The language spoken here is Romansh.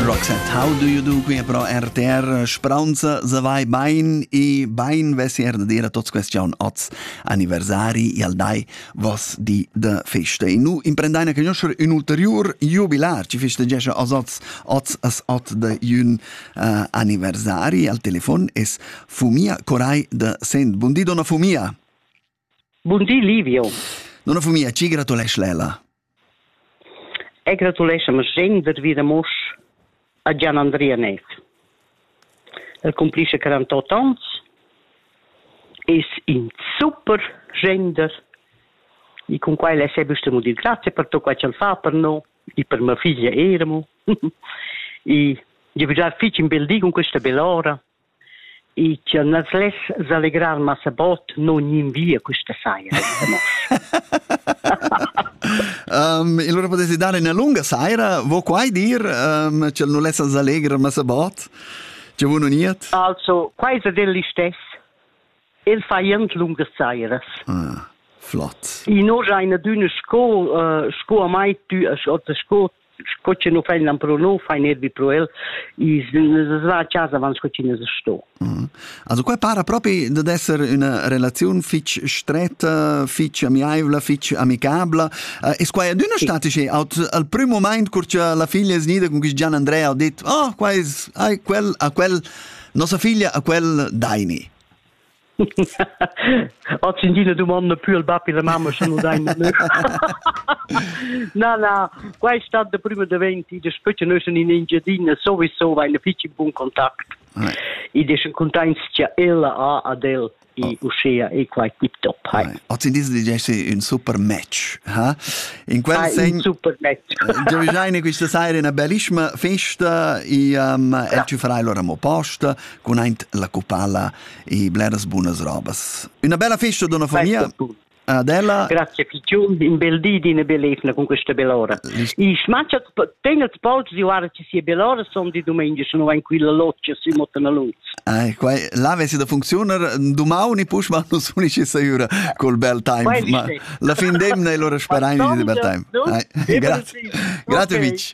Roxette, how do you do qui pro RTR Spraunza savai bain e bain vesier da dire tots question oz anniversari al dai vos di de feste. E nu imprendaina che noscher un ulterior jubilar ci festeggescha os oz oz as ot de un uh, anniversari al telefon es Fumia Corai de Sent. Bundi donna Fumia. Bun di, Livio. Nona famiglia, ci gratulesch Lela. E gratulescha ma gen der vida mosch a Gian Andrea Net. El cumplisce 48 ans, es in super gender e con quai le se bustemo dir grazie per tutto quai ch'el fa per no e per mia figlia eramo e je già fich in bel di con questa bell'ora I chia nus less s'allegrar massa bod non gnir via quista saira ite nos. um, allora potete dare una lunga saira, vo quai dir, um, cel nu lessa s'allegrar massa bod? C'è uno niet? Also, quai è del listes. El fa jent lungas sairas. Ah, flott. I no eine dünne Sco, uh, sco a mai tü, oder sco Sco che nu fain lampro nu, fain erbi pro el, i's va a casa avant sco chi ne sto. Mm. Also qua para propi dad esser üna relaziun fich stretta, fich amiaivla, fich amicabla. Uh, es quai adüna sì. statici? Aut al prüm moment, cur cha la figlia es gnida, con quist Gian Andrea, ha dit, oh, qua es, ai, quel, a quel, nossa figlia, a quel, daini. Hat sin dina dumonda pü al bap e la mamma sche nu dain nö. Na na, quai stat da prima daventi da spetg nus in Engiadina sowieso vain fich in bun kontakt. I deschen containtscha ella a ad el i uschea e quai tip top. Hai. Hat in diesel digessi ün super match, ha? In quel Hai, sen super match. Giovigiaine quista saira una bellissima festa e um, e ci farai lora mo posta con aint la cupala e bleras bunas robas. Una bella festa d'una famiglia. Adela. Grazie Fichium, in bel di di bellezna con questa bell'ora. I smacciat tengelt polz di ora ci sia bell'ora son di domenica sono in quella loccia sui Motanaluz. Ah, qua là avessi da funzionar domani push ma non sono ci sicura col bel time. Ma la fin d'emna e allora sperain di bel time. Grazie. Grazie Mitch.